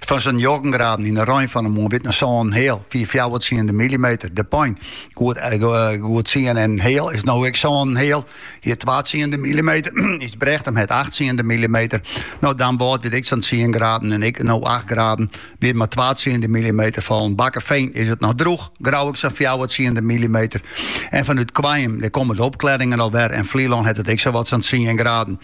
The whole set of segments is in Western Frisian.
Fan sa'n njoggen graden yn 'e rein fan 'e moarn wie 't in sân en heal fyn fjouwer tsiende millimeter De Pein. Goed tsien en heal is no ek sân en heal. Hjir twa tsiende millimeter Ysbrechtum hat acht tsiende millimeter. No Damwâld wie 't ek sa'n tsien graden en ek no acht graden. Wiet mar twa tsiende millimeter fallen. Bakkefean is it noch drûch, Grou ek sa'n fjouwer tsiende millimeter. En fanút Koarnjum, dêr komme de opklearingen al wer en Flylân hat it ek sawat sa'n tsien graden.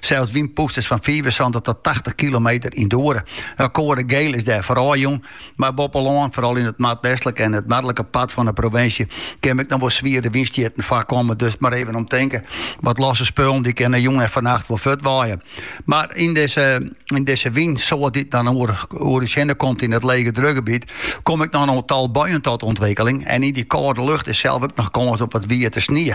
Sels wynpûsters fan fiifensantich tot tachtich kilometer yn de oere. Wel koade giel is dêrfoar ôfjûn, mar boppe lân, foaral yn it noardwestlike en it noardlike part fan de provinsje, kinne ek noch wol swiere wynstjitten foarkomme. Dus mar even om tinke, wat losse spullen dy kinne jûn en fannacht wol fuortwaaie. Mar yn dizze, yn dizze wynsoart dy't dan oer, oer ús hinne komt yn it legedrukgebiet, komme ek noch in tal buien tot ûntwikkeling en yn dy kâlde lucht is sels ek noch kâns op wat wiete snie.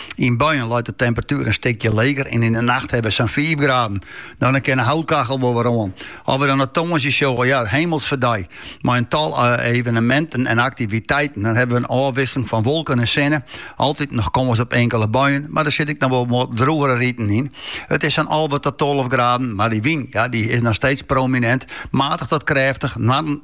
Yn buien leit de temperatuer in stikje leger en yn de nacht hawwe we sa'n fiif graden. No dan kin de houtkachel wol wer oan. As we dan op tongersdei sjogge, ja, Himelfeartsdei. Mei in tal eveneminten en aktiviteiten. Dan hawwe we in ôfwisseling fan wolken en sinne. Altyd noch kâns op inkele buien, mar der sit ek noch wol wat drûgere riten yn. It is sa'n alve ta tolve graden, mar dy wyn, ja, dy is noch steeds prominint. Matich tot krêftich, noarden.